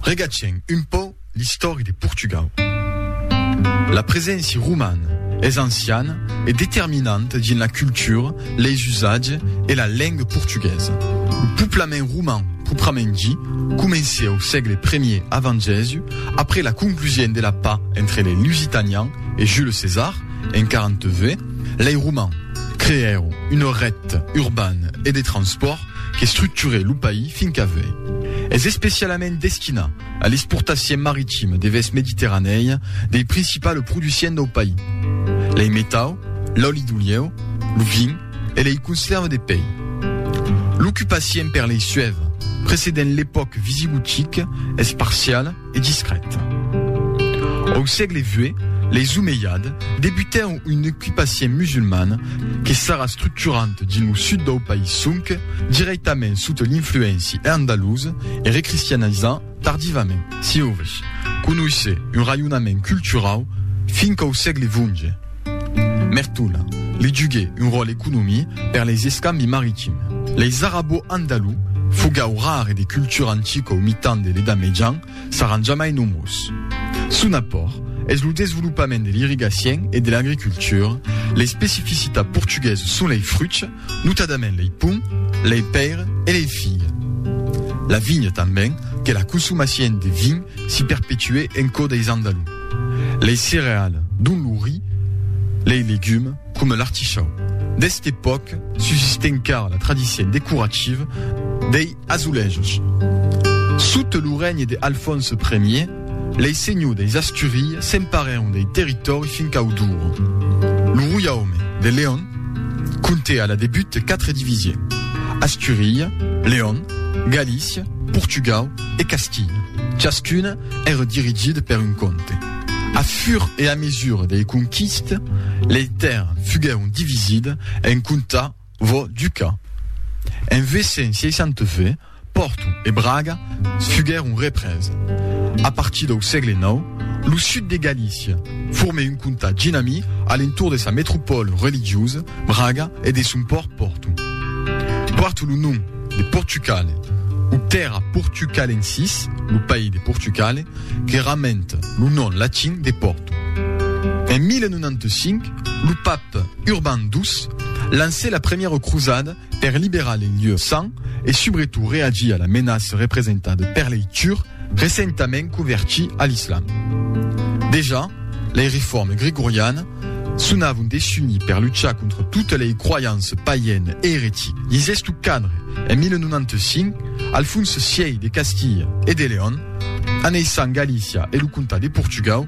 Regatgem un pò l'istòri de Portugau. La preséncia romana es anciana e determinanta dins la cultura, leis usatges e la lenga portuguesa. Lo poblament roman proprament dit comencèt au sègle premier avant Jèsu, après la conclusion de la paix entre lei Lusitanians e Jules César en 40 v. Lei Romans creèron una ret urbana e de transpòrt Qu'estructure lo país fin qu'a vei. Es especialament destinat a l'exportacien maritime devers Mediterranèi dei principale producients dau país, lei metau, l'òli d'olieu, lo vin e lei conserve de pei. L'ocupacien per lei suève, precedent l'epòc visigotique, es parciale, e discrèt. Au sègle xvi, les omeiades debutèron un ocupacion musulman que s'ara structurant dins lo sud dau país sonque dirèctament sota l'influéncia andalusa e recristianizant tardivament. Sieu vos conoissez un raionament culturau fin qu'au sègle xvi, Mertona, li juguè un ròl economi per leis escambi maritim. Leis arabo-andalou, fogau rare de cultura antica au mitan de l'Edat Mejan, saràn jamai nomós. Son apòrt es lo desvolopament de l'irrigacien e de l'agricultura, l'especificitat portuguesa son lei fruchs, Notadament lei ponts, lei pèires e lei filhs. La vinha tanben, que la consomacien de vin s'i perpetue en cò deis Andalous. Lei cereales, dont lo ri, lei legumes, coma l'artichau. D'este pòc subsiste encara la tradicien decorativa dei. Azulejos. Sota lo regne de Alfònse Ier, lei senhors deis Asturies s'emparèron dei territòri fins cau Douro. Lo roiaume de León comptè a la debut quatre divisie, Asturia, León, Galícia, Portugau e Castilha. Chascun èra dirigit per un comte. A fur e a mesura dei conquistes, lei tèrras fuguèron divisides en comtats, Vò duca. En 862, Pòrto e Braga fuguèron représ. A partir dau sègle nau, lo sud de Galícia formèt un comtat ginamí a l'entorn de sa metropòla religiosa, Braga, e de son pòrt, Pòrto. Pòrt lo nom de Portucale, o Terra Portucalensis, lo país de Portucale, que ramenta lo nom latin de Pòrto. En 1095, Lo pape Urban ii lancè la premiera crosada per liberar les lieux saints e subretot reagir a la menaça representada per lei turcs recentament convertits a l'islam. Dejà, lei reformes gregorianes sonavon desunir per luchar contra totas lei croyances païenes e eretiques. Dins esto cadre, en 1095, Alfons vii de Castilha e de León, aneissant Galícia e lo comtat de Portugau,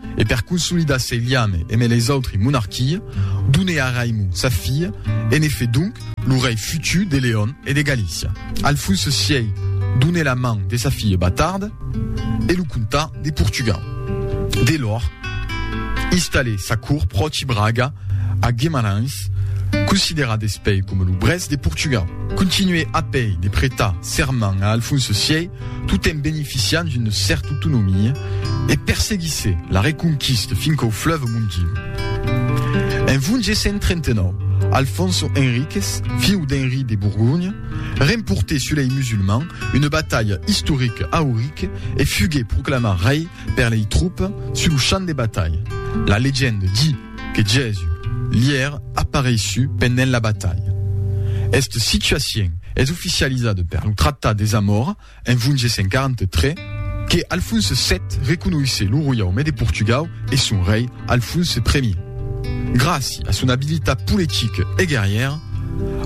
e per consolidar sei liame eme les autri monarquie, done a Raimon sa filha e ne fe donc lo rei futur de Leon e de Galícia. Alfonso sièi done la man de sa filha Batarde e lo comta de Portugau. De lor, installè sa cort pròchi Braga a Guemarães, considerat despei coma lo Brest de Portugau. Continuè apèi de pretar serment a Alfonso sièi tot en beneficiant d'una cèrta autonomia, e perseguisse la reconquista fin qu'au fleuve Mondego. En 1139, Alfonso Henriquez, fiu d'Henri de Borgonha, remportè sus lei musulmans una batalha istorica a Ourique e fuguè proclamat rei per lei tropas sus lo champ de batalha. La legenda di. Que Jèsus li ère apareishut pendent la batalha. Esta situacion es oficializada per lo Tractat de Zamora en 1143, que Alfonse vii reconoishé lo roiaume de Portugau e son rei Alfonse I. Gràci a son abilitat politica e guerrièra,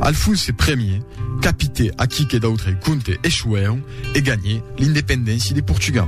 Alfonse I capitè aquí que d'autres comtes echoèron e ganhè l'independéncia de Portugau.